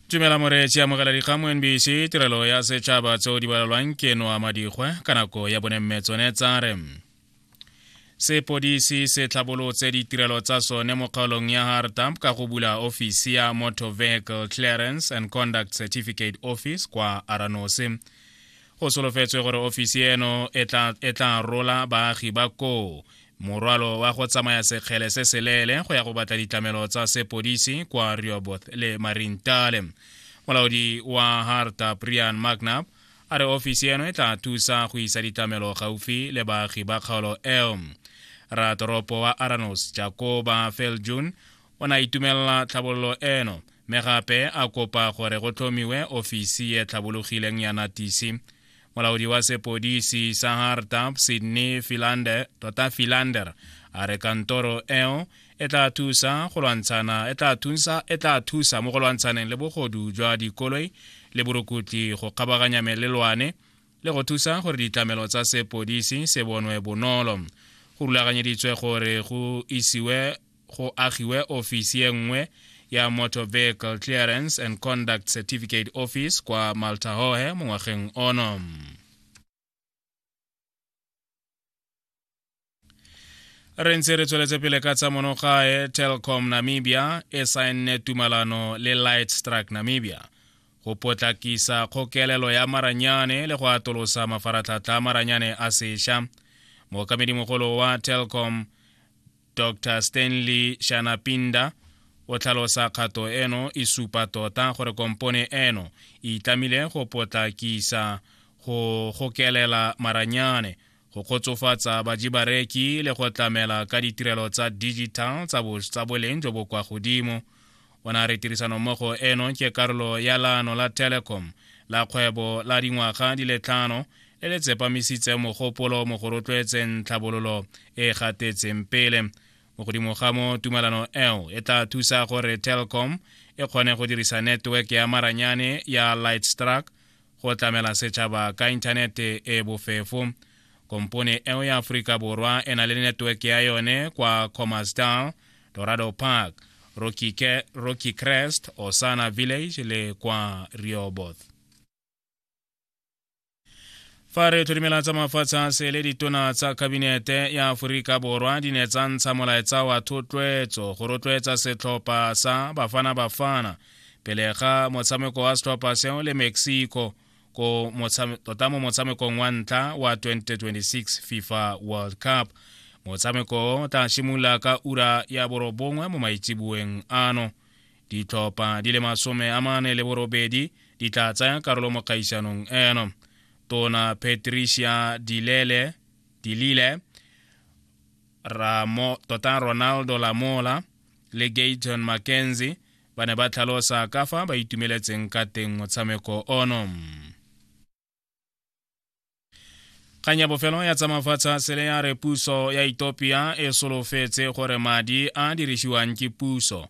tumela moreetsi amogela dikgang mo nbc tirelo ya setšhaba tseo di balalwang ke noa madikgwe ka nako ya bonemme tsone tsa re sepodisi se tlhabolotse ditirelo tsa sone mo kgaolong ya hartamp ka go bula ofisi ya motor vehicle clearance and conduct certificate office kwa aranose go solofetswe gore ofisi eno e tla rola baagi ba koo morwalo wa go tsamaya sekgele se seleele go ya go batla ditlamelo tsa sepodisi kwa rioboth le marintale molaodi wa harta brian magnap a re ofisi eno e tla thusa go isa ditlamelo gaufi le baagi ba kgaolo eo ratoropo wa aranos jakoba feljun o ne a itumelela tlhabololo eno mme gape a kopa gore go tlhomiwe ofisi e tlhabologileng ya natisi molaodi wa sepodisi sa hartap sydney filander tota filander a re kantoro eo e tla thusa go lwantshana e tla thusa e tla thusa mo go lwantshaneng le bogodu jwa dikoloi le borukutli go kgabaganya melelwane le go thusa gore ditlamelo tsa sepodisi se bonwe bonolo go rulaganyeditswe gore go isiwe go agiwe ofisi e nngwe ya Motor Vehicle Clearance and Conduct Certificate Office kwa Maltahohe mo ngwageng ono. re ntse re tsweletse pele ka tsa monogae telcom namibia e saenne tumalano le light struck namibia go potlakisa kgokelelo ya maranyane le go atolosa mafaratlhatlha a maranyane a sesha mookamedimogolo wa telcom dr stanley shanapinda o tlhalosa kgato eno e supa tota gore kompone eno e itlamile go potlakisa go gokelela maranyane go kgotsofatsa bajibareki le go tlamela ka ditirelo tsa digital tsa boleng jo bo kwa godimo o ne a re tirisanommogo eno ke karolo ya laano la telecom la kgwebo la dingwaga di le tlhano le le tsepamisitse mogopolo mo go rotloetseng tlhabololo e e gatetseng pele mo godimo ga mo tumelano eo e tla thusa gore telcom e kgone go dirisa network ya maranyane ya lightstruck go tlamela setšhaba ka inthanete e bofefo kompone eo ya aforika borwa e na le network ya yone kwa comasdal dorado park rocky, rocky crest osana village le kwa rioboth fa re tlhodimela tsa mafatshe a sele ditona tsa kabinete ya aforika borwa di ne tsa ntsha molaetsa wa thotloetso go rotloetsa setlhopha sa bafana bafana pele ga motshameko wa setlhopha seo le mexico ko tota mo motshamekong wa ntlha wa 2026 fifa world cup motshameko o tla simolola ka ura ya borobongwe mo maitseboeng ano ditlhopha di le masome a mane le borobedi di tla tsaya karolo mo kgaisanong eno tona patricia dilele dilile Ramo, tota ronaldo lamola le gayton mckenzie ba ne ba tlhalosa ka fa ba itumeletseng ka teng motshameko ono kgang ya bofelo ya tsa mafatsha sele ya re puso ya etopia e solofetse gore madi a dirisiwang ke puso